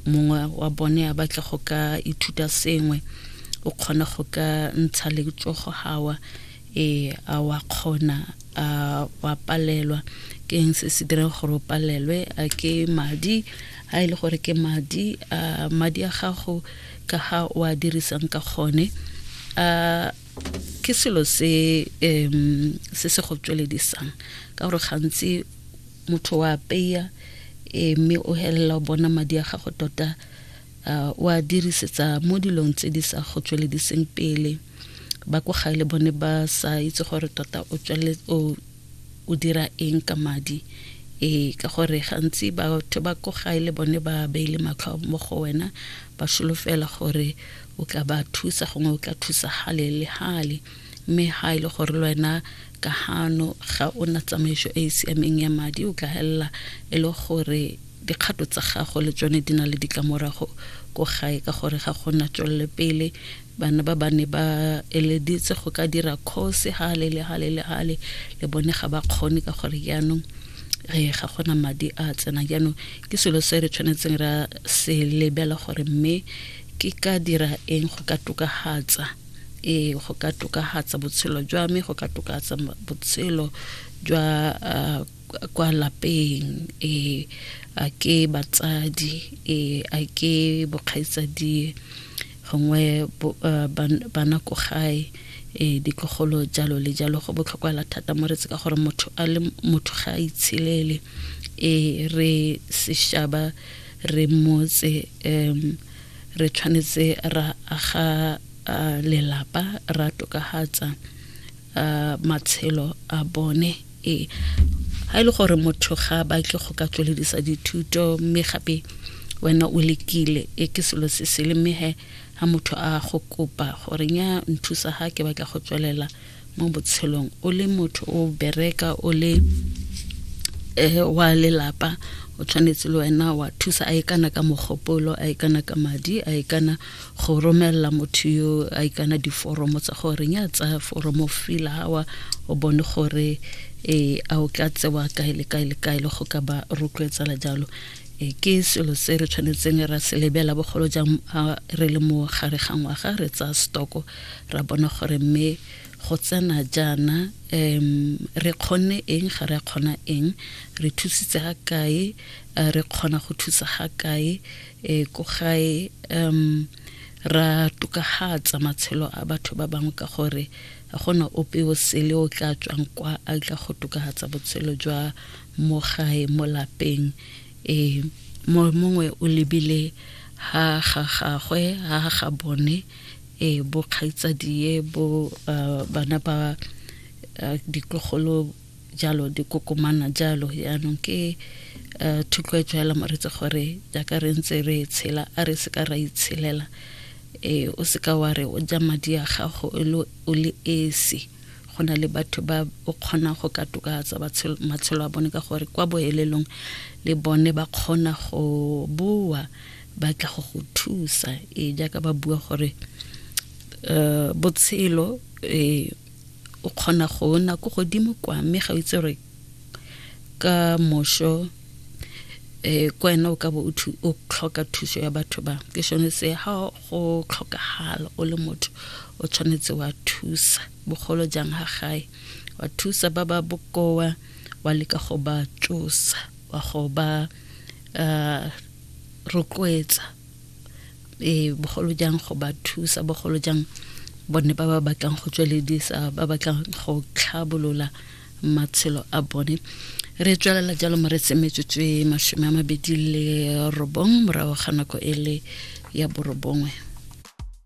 mongwe wa bone a batle go ka ithuta sengwe o kgona go ka ntsha letsogo gawa e a wa kgona a wa palelwa ke eng se se dirang gore o palelwe a ke madi a e le gore ke madi a madi a gago ka ga o a dirisang ka gone a ke selo se um se se go tsweledisang ka gore gantsi motho wa apeya eh, mme o helela o bona madi a gago tota uh, wa dirisetsa mo dilong tse di sa go tswelediseng pele ba ko gae le bone ba sa itse gore tota o tsweletse o dira eng ka madi ee ka gore gantsi batho ba ko gae le bone ba beile matlho mo go wena ba solofela gore o tla ba thusa gongwe o tla thusa gale le gale mme ga e le gore le wena ka gano ga o na tsamaiso e e siameng ya madi o tla helela e le gore Dikgato tsa gago le tsone di na le ditlamorago ko gae ka gore ga go na tswellepele. Bana ba ba ne ba eleditse go ka dira kgosi hale le hale le hale le bone ga ba kgone ka gore jaanong re ga gona madi a tsena jaanong ke selo se re tshwanetseng ra se lebela gore mme ke ka dira eng go ka tokahatsa ee go ka tokahatsa botshelo jwa me go ka tokahatsa botshelo jwa kwa lapeng e a ke batsadi e a ke bokgaitsadie gongwe eh, bana ko gae e ditlogolo jalo le jalo go botlhokwala thata mo re tse ka gore motho a le motho ga a itshelele e re seshaba re motse um re tshwanetse ra aga lelapa ra tokahatsa matshelo a bone ee ga e le gore motho ga ba ke go ka tsweledisa dithuto mme gape wena o lekile e ke selo se se le mehe ga motho a go kopa gore nya nthusa ga ke batla go tswelela mo botshelong o le motho o bereka o le eh, wa lelapa o tshwanetse le wena wa thusa a e kana ka mogopolo a e kana ka madi a e kana go romelela motho yo a ikana diforomo tsa gore reng a tsaya foromo fila gawa o bone gore um a o ka tsewa kae le kae le kae le go ka ba rotloetsela jalo um ke selo se re tshwanetseng ra se lebela bogolo jang re le mo gare ga ngwaga re tsaya stoko ra bona gore mme go tsena jaana um re kgonne eng ga re a kgona eng re thusitse ga kae re kgona go thusa ga kae e ko gae um ra tokagatsa matshelo a batho ba bangwe ka gore ga gona ope o sele o tla tswang kwa a tla go tokagatsa botshelo jwa mo gae mo lapeng um mongwe o lebile ha ga gagwe ha ga bone um bokgaitsadie bo uh, bana ba uh, ditlogolo jalo di kokomana jalo yaanong ke uh, thutloetso ya lamoritse gore jaaka re ntse re tshela a re se ka ra itshelela e o se ka wa re o ja madi a gago o le esi go na le batho ba o kgona go ka tokatsa matshelo a bone ka gore kwa boelelong le bone ba kgona go boa ba tla go go thusa e jaaka ba bua gore um botshelo um o kgona go na ko godimo kwa mme ga o itse gore ka mošo um kwa ena o ka bo o tlhoka thuso ya batho ba ke sone se ga go tlhokagala o le motho o tshwanetse wa thusa bogolo jang ga gae wa thusa ba ba bokoa wa leka go ba tsosa wa go ba um rotloetsa e bogolo jang go ba thusa bogolo jang bone ba ba batlang go tsweledisa ba batlang go tlhabolola matshelo a bone re tswelela jalo mo re tsemetsetswe masome a mabedi le robong morago ga nako e le ya borobongwe